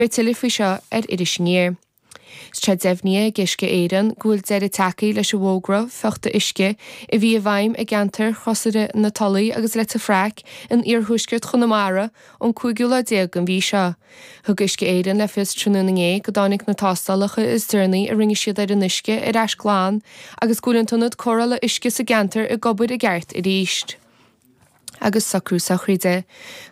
Beidh tuilleadh faoi seo ar Iris Aniar. Tá sé deimhnithe ag Uisce Éireann go bhfuil deireadh tagtha leis an bhfógra fiuchta uisce a bhí i bhfeidhm i gceantar Chrosaire na Tulaí agus Leitir Fraic in iarthuaisceart Chonamara ón cúigiú lá déag den mhí seo. Thug Uisce Éireann le fios tráthnóna inné go dtáinig na tástálacha is deireanaí a rinne siad ar an uisce ar ais glan agus go bhfuil an t-ionad cóireála uisce sa gceantar ag obair i gceart arís. agus socrú sochraide.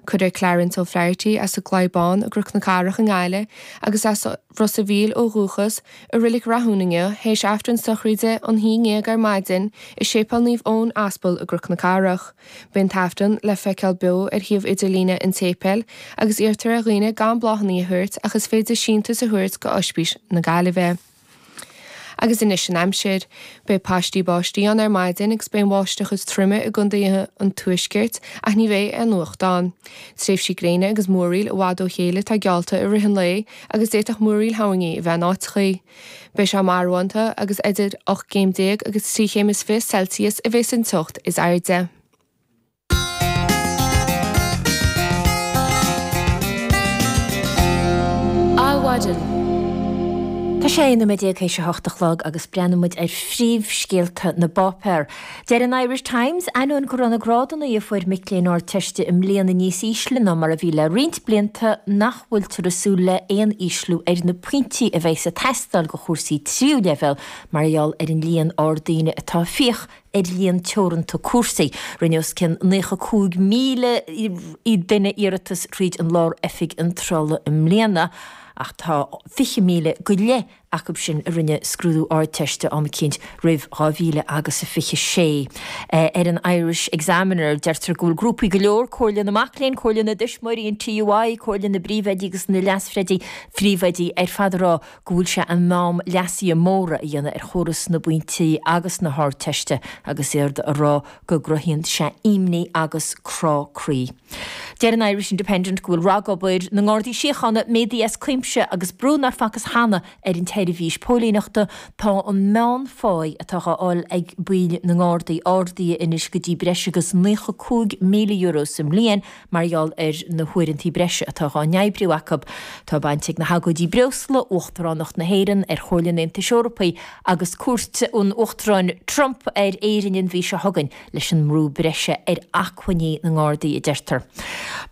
Cuirfear Clarence O'Flaherty as an gCladhach Bán i gCroc na Cathrach i nGaillimh agus as Ros a' Mhíl ó dhúchas, i Reilig Rathún inniu, théis Aifreann sochraide ag a haon déag ar maidin i Séipéal Naomh Eoin Aspal i gCroc na Cathrach. Beidh an tAifreann le feiceáil beo ar shuíomh idirlíne an tséipéil agus iarrtar ar dhaoine gan bláthanna a thabhairt ach is féidir síntiús a thabhairt go Oispís na Gaillimhe. Agus anois an aimsir. Beidh paistí báistí ann ar maidin agus beidh an bháisteach is troime i gcondaetha an tuaiscirt ach ní bheidh an fuacht ann. Tréimhsí gréine agus múraíl i bhfad ó chéile atá geallta i rith an lae agus d'fhéadfadh múraíl thoirní a bheith in áiteachaí. Beidh sé marbhánta agus idir ocht gcéim déag agus trí chéim is fiche celsius a bheas an teocht is airde. Tá sé naoi nóiméad théis a hocht a chlog agus breathnóidh muid ar phríomhscéalta na bpáipéar. Deir an Irish Times, Ainneoin go raibh na grádanna a fuair mic léinn Ardteiste i mbliana níos ísle ná mar a bhí le roinnt blianta nach bhfuiltear ag súil le haon ísliú ar na pointí a bheas ag teastáil do chúrsaí tríú leibhéal mar gheall ar an líon ard daoine atá ar líon teoranta cúrsaí. Rinne os cionn naocha cúig míle duine iarratas tríd an Lár-Oifig Iontrála i mbliana ach tá fiche míle go leith acu sin a rinne scrúdú Ardteiste am eicínt roimh dhá mhíle agus a fiche sé. Ar an Irish Examiner, deirtear go bhfuil grúpaí go leor, Comhairle na Mac Léinn, Comhairle na dTuismitheoirí, an TUI, Comhairle na bPríomhoidí agus na Leas-Phríomhoidí ar fad ag rá go bhfuil sé in am leasuithe móra a dhéanamh ar chóras na bpointí agus na hArdteiste agus iad a rá go gcruthaíonn sé imní agus crá croí. Deir an Irish Independent go bhfuil ragobair na nGardaí Síochána méadaithe as cuimse agus brú nár facthas cheana ar an tseirbhís póilíneachta, tá an meánphá atá á fháil ag baill na nGardaí ardaithe anois go dtí breis agus €95,000 sa mbliain mar gheall ar na huaireantaí breise atá dhá n-oibriú acu. Tá baint ag na hagóidí breosla, Uachtaránacht na hÉireann ar Chomhairle an Aontais Eorpaigh agus cuairt an Uachtaráin Trump ar Éirinn an mhí seo chugainn, leis an mbrú breise ar acmhainní na nGardaí, a deirtear.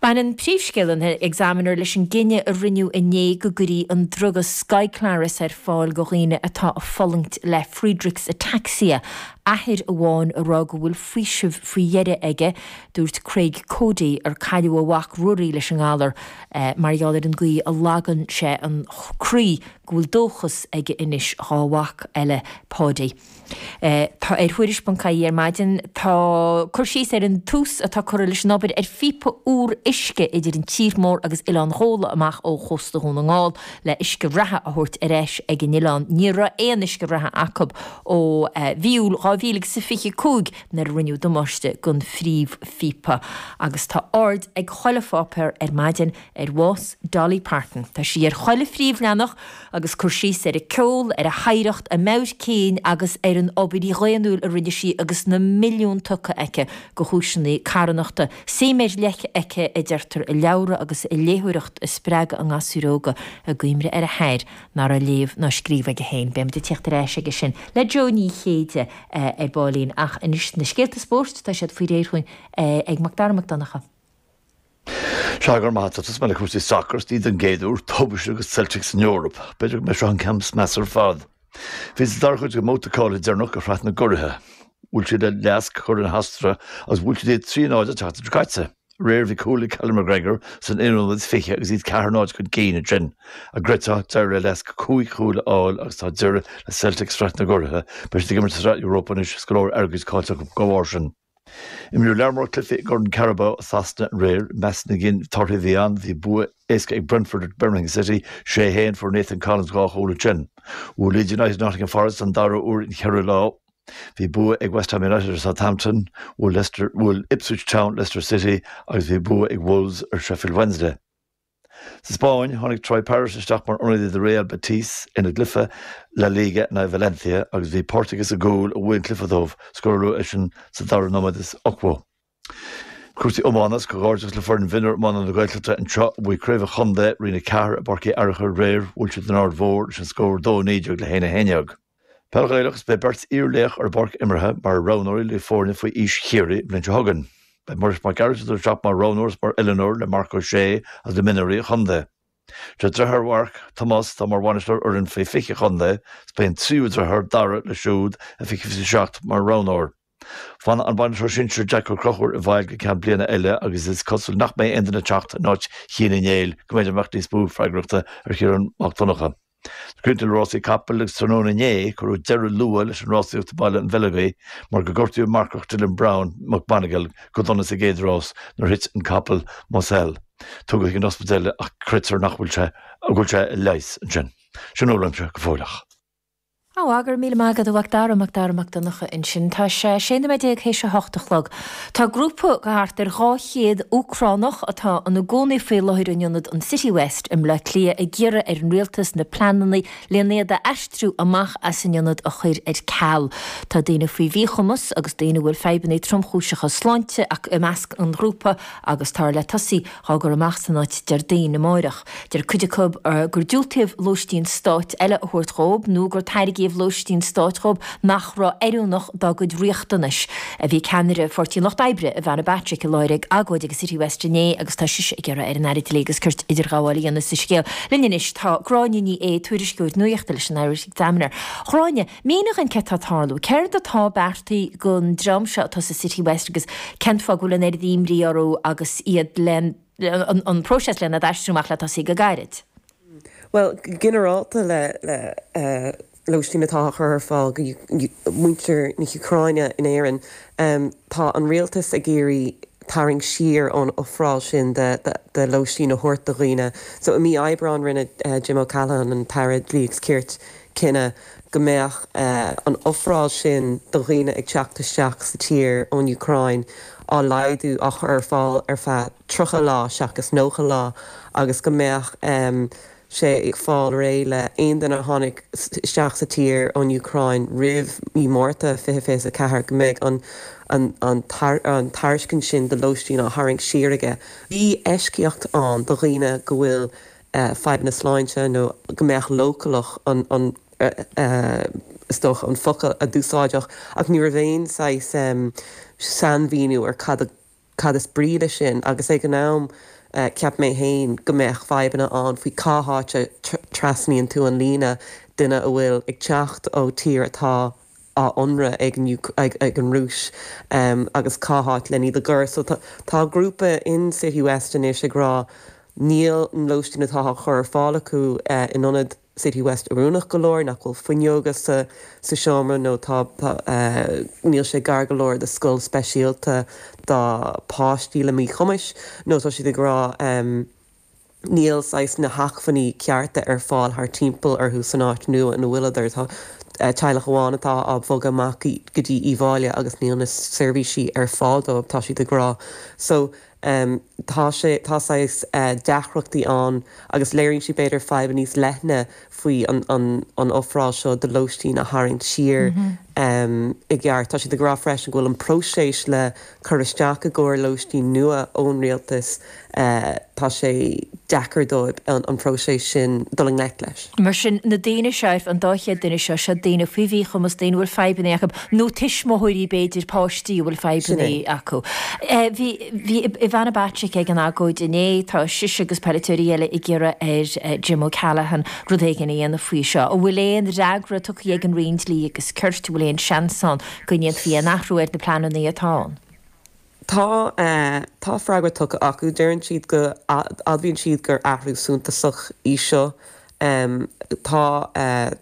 Baineann príomhscéal an Examiner leis an gcinneadh a rinneadh inné go gcuirfí an druga Skyclarys ar fáil go dhaoine atá a fulaingt le Friedreich's Ataxia, athair amháin a rá go bhfuil faoiseamh faoi dheireadh aige, Dúirt Craig Coady, ar cailleadh a mhac Ruairí leis an ngalar, mar gheall ar an gcaoi a lagann sé an croí, go bhfuil dóchas aige anois dhá mhac eile, Paudie, Tá ar Thuairisc Ponc IE ar maidin tá cur síos ar an tús atá curtha leis an obair ar phíopa úr uisce idir an tír mór agus Oileán Ghabhla amach ó chósta Dhún na nGall le huisce reatha a thabhairt ar ais ag an oileán Ní raibh aon uisce reatha acu ó mhí Iúil 2025 nuair a rinneadh damáiste don phríomhphíopa agus tá aird ag chuile pháipéar ar maidin ar bhás Dolly Parton. Tá sí ar chuile phríomhleathanach agus cur síos ar a ceol, ar a hoidhreacht, a meabhair cinn agus ar an obair dhaonnúil a rinne sí agus na milliúin tugtha aici do chúiseanna carthanachta. Suim ar leith aici, a deirtear, i leabhra agus i léitheoireacht a spreagadh i ngasúir óga, i gcuimhne ar a hathair, nach raibh léamh ná scríobh aige féin. Beimid ag tíocht ar ais aige sin le Jo Ní Chéide ar baillín, ach anois na scéalta spóirt, tá siad faoi réir chugainn ag Macdara Mac Donncha. Sea, go raibh maith a't, tosóidh mé le cúrsaí sacair, is ní don gcéad uair, tubaiste ag Celtic san Eoraip. B'fhéidir go mb'é seo an ceann is measa ar fad. Bhí sa dara cuid den mbabhta cáilithe deireanach de Shraith na gCuraithe. Bhuail siad le LASK, curaidh na hOstaire, agus bhuail siad iad trí náid an tseachtain seo caite. réir bhí cúl ag Callum McGregor sa naoú nóiméad 20 agus iad ceathair náid chun cinn ansin an gcreidfeá d'éirigh le LASK cúig chúl a fháil agus tá deireadh le Celtic i Sraith na gCuradh, beidh siad ag imirt sa Sraith Europa anois, is go leor airgid caillte acu dá bharr sin. Imríodh lear mór cluichí i gCorn Carabao Shasana aréir, i measc na gcinn torthaí a bhí ann, bhí bua éasca ag Brentford ar Birmingham City, 6 1, fuair Nathan Collins dhá chúl acu sin. Bhuail Leeds United Nottingham Forest don dara huair in cheithre lá, Bhí bua ag West Ham United ar Southampton, bhuail Leicester, bhuail Ipswich Town Leicester City agus bhí bua ag Wolves ar Sheffield Wednesday. Sa Spáinn, tháinig Troy Parrott isteach mar ionadaí do Real Betis ina gcluife La Liga in aghaidh Valencia agus bhí páirt aige sa gcúl a bhuaigh an cluiche dóibh, scóráladh é sin sa dara nóiméad is ochtó. Cúrsaí iomána 's comhghairdeachas le foireann mhionúr iomána na Gaeltachta anseo a bhuaigh Craobh an Chontae, Roinn 4, i bPáirc Uí Fhearchair aréir. Bhuail siad an Aird Mhór leis an scór 2, 19 le 1, 11. Peil Ghaelach 's beidh beirt iar-laoch ar an bpáirc imeartha mar roghnóirí le foirne faoi aois Chiarraí an bhliain seo chugainn. Beidh Muiris Mac Gearailt ag dul isteach mar roghnóir 's mar oiliúnóir le Marc Ó Sé agus le mionúirí an chontae. Sé driotháir Mharc, Tomás, atá mar bhainisteoir ar fhoireann faoi 20 an chontae 's beidh an tríú driotháir, Dara, leis siúd i 2027 mar roghnóir. Fanfaidh an bainisteoir sinsear Jack Ó Conchúir i bhfeighil go ceann bliana eile agus is cosúil nach mbeidh aon duine ag teacht in áit Chéin Uí Néill go mb'fhéidir go mbeadh níos mó freagrachta ar Chiarán Mac Donncha. Críochnóidh mé le rásaí capaill agus tráthnóna inné cuireadh deireadh luath leis an rásaíocht i mBaile an Bheileogaigh mar gur gortaíodh an marcach Dylan Browne McMonagle go dona sa gcéad rás nuair a thit an capall Moselle. Tugadh chuig an ospidéal é ach creidtear nach bhfuil sé, go bhfuil sé á leigheas ansin. Sin é uaimse go fóilleach. Á, á, go raibh míle maith agat, a Mhacdara, Macdara Mac Donncha ansin. Tá sé seacht nóiméad déag théis a hocht a chlog. Tá grúpa de thart ar dhá chéad Úcránach atá ina gcónaí faoi láthair in ionad an Citywest i mBleá Cliath ag iarraidh ar an rialtas na pleananna len iad a aistriú amach as an ionad a chur ar ceal. Tá daoine faoi mhíchumas agus daoine a bhfuil fadhbanna tromchúiseacha sláinte acu i measc an ghrúpa agus táthar le tosaí Dhá gcur amach as an áit Déardaoin, amáireach. Deir cuid acu gur diúltaíodh lóistín stáit eile a thabhairt dhóib nó gur tairgíodh lóistín stáit dhóib nach raibh oiriúnach dá gcuid riachtanais. Bhí ceannaire Pháirtí an Lucht Oibre, Ivana Bacik, i láthair ag agóid ag an Citywest inné agus tá sise ag iarraidh ar an Aire Dlí agus Cirt idirghabháil a dhéanamh sa scéal. Linn anois tá Gráinne Ní Aodha, tuairisceoir nuachta leis an Irish Examiner. Gráinne. Mínigh dhom céard atá ag tarlú. Céard atá beartaithe don dream seo atá sa Citywest agus cén fáth go bhfuil an oiread imní orthu agus iad le an próiseas len iad a aistriú amach le tosaí go gairid? Bhuel, go ginearálta le lóistín atá á chur ar fáil do mhuintir na hÚcráine in Éirinn, tá an rialtas ag iarraidh tarraingt siar ón ofráil sin de lóistín a thabhairt do dhaoine. So i mí Aibreáin rinne Jim O'Callaghan, an tAire Dlí agus Cirt, cinneadh, go mbeadh an ofráil sin do dhaoine ag teacht isteach sa tír ón Úcráin á laghdú, á chur ar fáil ar feadh 30 lá seachas 90 lá agus go mbeadh sé ag fáil réidh le haon duine a tháinig isteach sa tír ón Úcráin roimh mhí Mhárta 2024, go mbeidh an tairiscint sin do lóistín á tharraingt siar aige. Bhí eisceacht ann do dhaoine go bhfuil fadhbanna sláinte nó go mbeadh siad leochaileach an, an, is dócha, an focal a úsáideadh, ach ní raibh aon saghas sainmhíniú ar cad, cad is brí leis sin agus ag an am cheap mé féin go mbeadh fadhbanna ann faoi cá háit a trasnaíonn tú an líne, duine a bhfuil ag teacht ó tír atá á ionradh ag an ag an Rúis agus cá háit len iad a chur. So tá grúpa in Citywest anois ag rá níl an lóistín atá á chur ar fáil acu in ionad Citywest oiriúnach go leor, nach bhfuil fuinneoga sa seomra nó tá níl sé gar go leor do scoil speisialta do pháistí le míchumais nó tá siad ag rá, níl saghas na hacmhainní cearta ar fáil thart timpeall orthu san áit nua ina bhfuileadar. Tá teaghlach amháin atá á bhogadh amach go dtí Uíbh Fhailí agus níl na seirbhísí ar fáil dóibh, tá siad ag rá. So, em, tá sé, tá saghas eh, deacrachtaí ann agus léiríonn sé b'fhéidir fadhb níos leithne faoi an, an, an ofráil seo de lóistín a tharraingt siar, em, i gceart. Tá siad ag rá freisin go bhfuil an próiseas le. cur isteach i gcomhair lóistín nua ón rialtas, tá sé deacair dóibh an próiseas sin dul i ngleic leis. Mar sin, na daoine seo, an dá chéad duine seo, seo daoine faoi mhíchumas, daoine a bhfuil fadhbanna acu, nó tuismitheoirí, b'fhéidir, páistí a bhfuil fadhbanna acu. Bhí, bhí Ivana Bacik ag an agóid inné, tá sise agus poiliteoirí eile ag iarraidh ar Jim O'Callaghan rud éigin a dhéanamh faoi seo. An bhfuil aon fhreagra tugtha ag an Roinn Dlí agus Cirt, an bhfuil aon seans ann go ndéanfaí aon athrú ar na pleananna atá ann. Tá, tá freagra tugtha acu, deireann siad go, admhaíonn siad gur athrú suntasach í seo. Tá,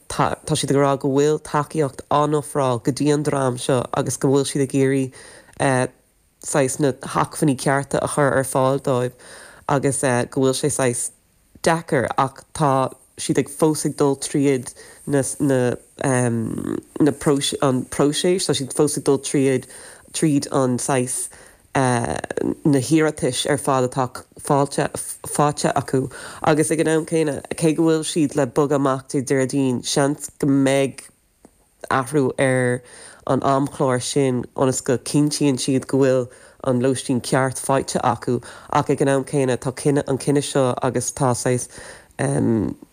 tá, tá siad ag rá go bhfuil tacaíocht á n-ofráil go dtí an dream seo agus go bhfuil siad ag iarraidh saghas na hacmhainní cearta a chur ar fáil dóibh agus go bhfuil sé saghas, deacair ach tá siad ag fós ag dul tríd na na na próisis an próiseas tá siad fós ag dul tríd tríd an saghas na hiarratais ar fad atá fáilte faighte acu agus ag an am céanna cé go bhfuil siad le bogadh amach Dé Déardaoin seans go mbeidh athrú ar an amchlár sin ionas go cinntíonn siad go bhfuil an lóistín ceart faighte acu ach ag an am céanna tá cinneadh an cinneadh seo agus tá saghas.